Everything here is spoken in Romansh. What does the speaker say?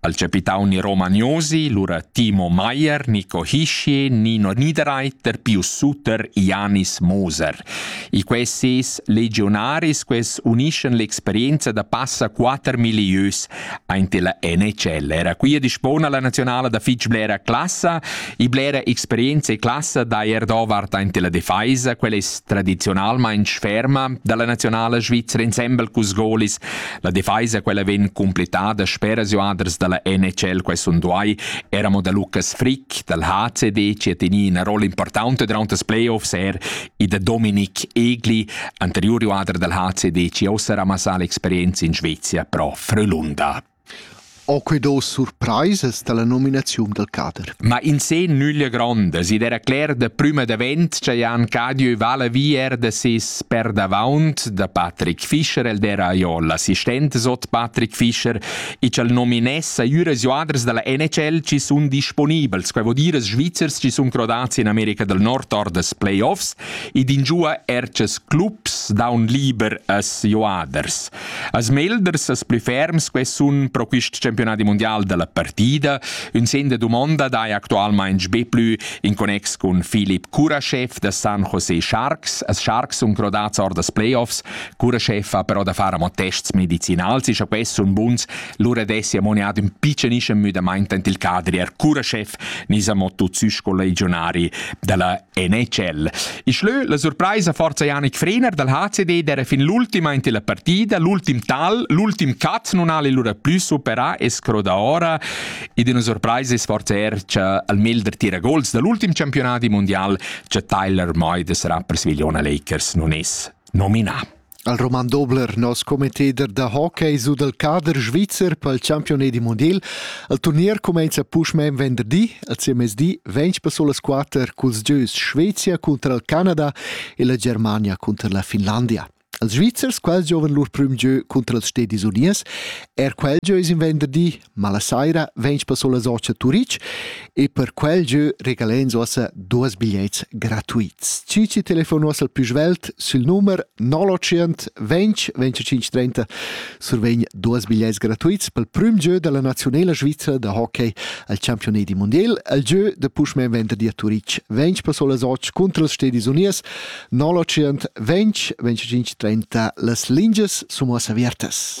Al capitauni romaniosi, lura Timo Maier, Nico Hischier, Nino Niederreiter, più Suter, Janis Moser. I quesis legionaris ques uniscen l'experienza da passa quatter milieus aint la NHL. Era qui a dispona la nazionala da fitch blera classa, i blera experienza e classa da Erdovart aint la defeisa, quella es tradizionalmain ferma dalla nazionala svizzera ensemble cus golis La defaisa quella vegn completada speras joaders dalla NHL quai sun duai era mo da Lucas Frick dal HCD che teni una rolla importante durante das playoffs er e da Dominik Egli anterior joader dal HCD che ossa ramassà l'experienza in Svezia pro Frölunda. Ho que do surpraisas dalla nominaziun dal cader? Ma in se nüglia grondas, id era cler da prüma davent cha Jan Cadieu vala vi er da ses perdavaunt da Patrick Fischer, el d'era Aiol, assistent sot Patrick Fischer, e ch'al nominessa üras joaders dalla NHL ci sun disponibels, quai vo dir as Svizzers ci sun crodats in America del Nord or das playoffs, ed ingiua er ces clubs daun liber as joaders. As melders, as plü ferms que sun pro quist campionadi mundial da la partida, ün sen da dumonda daja actualmaing be plü in connex cun Filip Kurashev da San Jose Sharks. As Sharks sun crodats or das Playoffs. Kurashev ha però da far amo tests medicinals e scha quest sun buns, lura dessi ammoniat ün piccenischem müdamaint ant il cadri. Er Kurashev nis amo tut sü sco legionari da la NHL. Il schlö la surpraisa forza Janik Frener dal HCD d'era fin l'ultima in la partida, l'ultim tal, l'ultim cut non ha lura plü supera e scroda ora ed una surpraisa es forza er cha al mel der tira gols dall'ultim campionati mondial cha Tyler Moy sarà per Svigliona Lakers non es nominà. al Roman Dobler, nos commetteder da hockey su dal cader svizzer pel champione di mondial. Il turnier cumenza puschmain venderdi, al CMSD ventg per sulas quatter culs gieus Svezia cunter il Canada e la Germania cunter la Finlandia. Els Svizzers quels giovan lur prüm gieu cunter els Stedis Uniers, er quel gieu es in venderdi Ma la saira vegns passo la socia Turitg e per quel jeu regalens ossa duas bigliets gratuits. Ci ci telefono al più svelt sul numero 920 20 25 30 survegn duas bigliets gratuits pel prim jeu dalla nazionala Svizra da hockey al campionat di mondial al jeu de Pushman venderdi a Turitg. Vegns passo la socia contro las Stedis Unias 920 20 25 30 las linges sono aviertas.